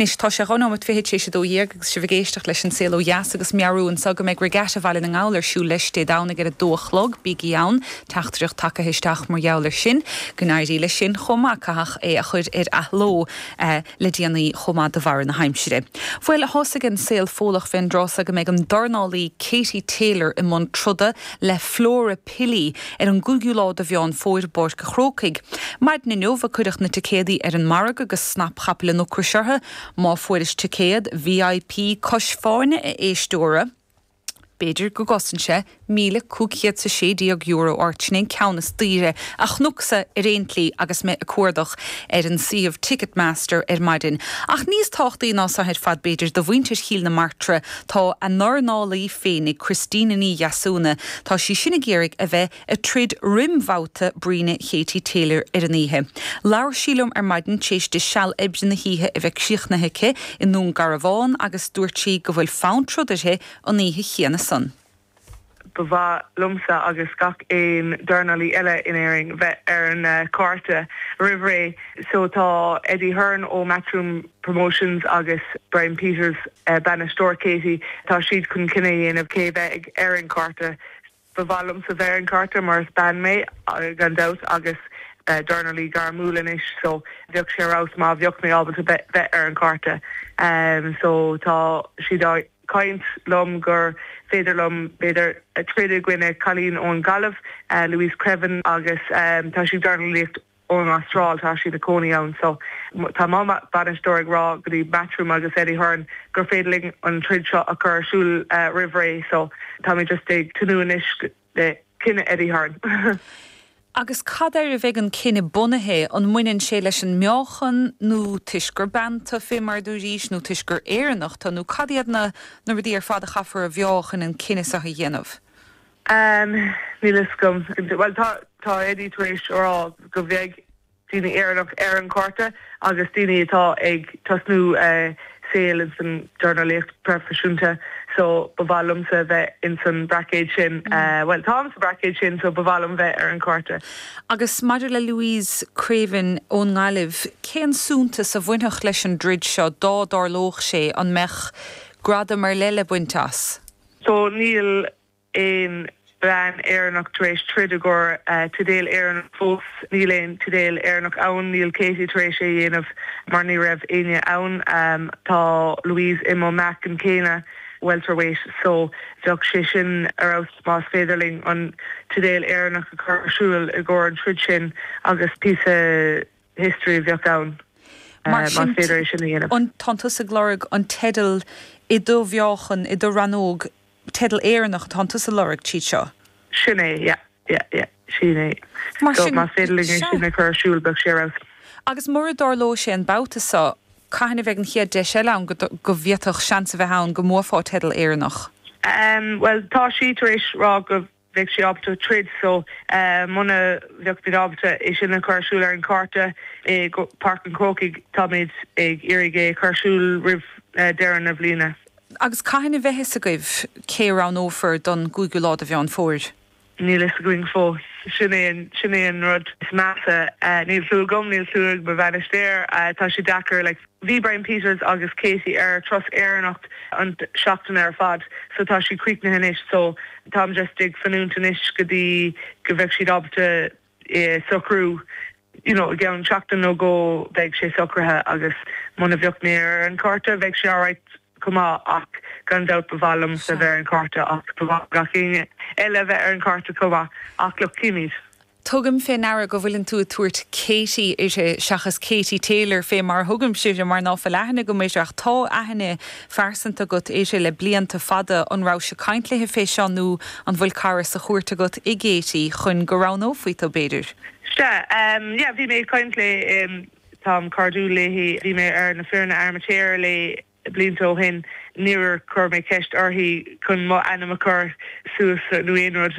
Anois tá sé dhá nóimeat fichead tar éis a dó dhéag agus sibh ag éisteacht leis An Saol Ó Dheas agus meabhrú anseo go mbeidh Regatta Bhaile na nGall ar siúl leis Dé Domhnaigh ar a dó a chlog, bígí ann, teachtaireacht tagaithe isteach mar gheall ar sin. Go n-éirí leis sin chomh maith, caitheadh é a chuir ar athló le déanaí chomh maith de bharr na haimsire. Bhuel, thosaigh an saol Fódhlach fén dtrá seo go mbeidh an dornálaí Katie Taylor i mbun troda le Flora Pili, ar an gcúigiú lá de Mheán Fómhair i bPáirc a' Chrócaigh. Maidin inniu a cuireadh na ticéadaí ar an margadh agus snap chapaill an ocrais orthu. Má fuairis ticéad VIP cois fáinne a éisteoir, b'fhéidir go gcosnódh sé míle cúig chéad 's a sé déag euro ort, sin é an ceann is daoire a chnucsa ar aon tslí agus mé ag cuardach ar an suíomh Ticketmaster ar maidin. Ach níos tábhachtaí ná so ar fad b'fhéidir do mhuintir Chill na Martra, Tá a ndornálaí féinig, Christina Ní Dheasúna, tá sí sin ag iarraidh a bheith ag troid roim bhabhta bruíne Katie Taylor ar an oíche. Labhair sí liom ar maidin t'éis di seal oibre na hoíche a bheith críochnaithe aici i nDún Garbhán agus dúirt sí go bhfuil fonn troid uirthi an oíche chéanna san. Ba mhaith liomsa agus gach aon dornálaí eile in Éirinn bheith ar an cárta roimh ré so tá Eddie Hearn ó Matchroom Promotions agus Brian Peters, bainisteoir Katie, tá siad chun cinneadh a dhéanamh cé a bheidh ar an chárta. Ba mhaith liomsa bheith ar an chárta mar is bean mé gan dabht agus dornálaí gairmiúil anois so bheadh sé ar fheabhas má bheadh mé ábalta bheith ar an chárta so tá siad á caint liom gur féidir liom, b'fhéidir, troid i gcoinne cailín ón Ghaillimh, Louise Creaven, agus tá sí ag dornálaíocht ón Astráil, tá sí ina cónaí ann. So tá mo bhainisteoir ag rá go dtí Matchroom agus Eddie Hearn gur féidir linn an troid seo a chur ar siúl roimh ré. So táimid just ag tnúth anois go. Beidh cinneadh ag Eddie Hearn. Agus cad air a bheidh an cinneadh bunaithe? An mbaineann sé leis an meáchan, nó toisc gur bean tu, fé mar a dúirís, nó toisc gur Éireannach tu, nó cad iad na na rudaí ar fad a chaithfear a mheá chun an cinneadh seo a dhéanamh? Am, níl fhios agam. Bhuel, tá tá Eddie tar éis a rá go bheidh. daoine Éireannach ar an cárta agus daoine atá ag tosnú saol ins an dornálaíocht proifisiúnta so ba mhaith liomsa bheith ins an braicéad sin, bhuel táim sa braicéad sin so ba mhaith liom bheith ar an cárta. Agus maidir le Louise Creaven ón nGaillimh, cén suntas a bhainfeadh leis an dtroid seo dá dtarlódh sé, an mbeadh gradam ar leith le baint as? So níl. aon bhean Éireannach tar éis troid i gcomhair teideal Éireannach fós. Níl aon teideal Éireannach ann. Níl Katie tar éis é a dhéanamh mar ní raibh éinne ann. Tá Louise i mo mheáchan céanna, welterweight, so bheadh sé sin ar fheabhas más féidir linn an teideal Éireannach a chur ar siúl i gcomhair an troid sin agus píosa history a bheadh ann más féidir é sin a dhéanamh. Tánn tusa ag lorg an teideal i do mheáchan, i do rannóg, teideal Éireannach atánn tusa ag lorg tríd seo. Sin é, yeah, yeah, yeah. Sin é. So, más féidir linn é sin a chur ar siúl, bheadh sé ar fheabhas. Agus mura dtarlóidh sé an babhta seo, cathain a bheidh an chéad deis eile ann go bhféadfadh seans a bheith ann go mbuafá teideal Éireannach? Bhuel, tá sí tar éis rá go. bheadh sí ábalta troid so muna bheadh muid ábalta é sin a chur ar siúl ar an gcárta i bPáirc an Chrócaigh. Táimid ag iarraidh é a chur ar siúl roimh deireadh na bliana. Agus cathain a bheidh fhios agaibh cé a roghnófar don gcúigiú lá de Mheán Fómhair? Níl fhios againn fós. Sin é sin é an rud is measa. Níl clue agam, níl clue ag mo bhainisteoir. Tá sé deacair like. Bhí Brian Peters agus Katie ar turas Éireannach an tseachtain ar fad so tá siad críochnaithe anois so táim just ag fanúint anois go dtí go bheadh siad ábalta é a shocrú you know i gceann seachtain nó dhó bheidh sé socraithe agus muna bheadh mé ar an gcárta bheadh sé alright chomh maith ach gan dabht ba mhaith liomsa bheith ar an gcárta ach ba mhaith gach éinne eile a bheith ar an gcárta chomh maith ach look cífimid. Tugaim fé ndeara go bhfuileann tú ag tabhairt Katie uirthi seachas Katie Taylor fé mar a thugaimse uirthi mar ná fuil aithne agam uirthi ach tá aithne phearsanta agat uirthi le blianta fada. An rabhais-se ag caint léi fé seo nó an bhfuil cara sa chúirt agat i gKatie chun go roghnófaí tú, b'fhéidir? Sea, yeah, bhí mé ag caint léi, táim cairdiúil léi, bhí mé ar na foirne amateur léi blianta ó shin, níor chuir mé ceist uirthi chun mo ainm a chur suas nó aon rud.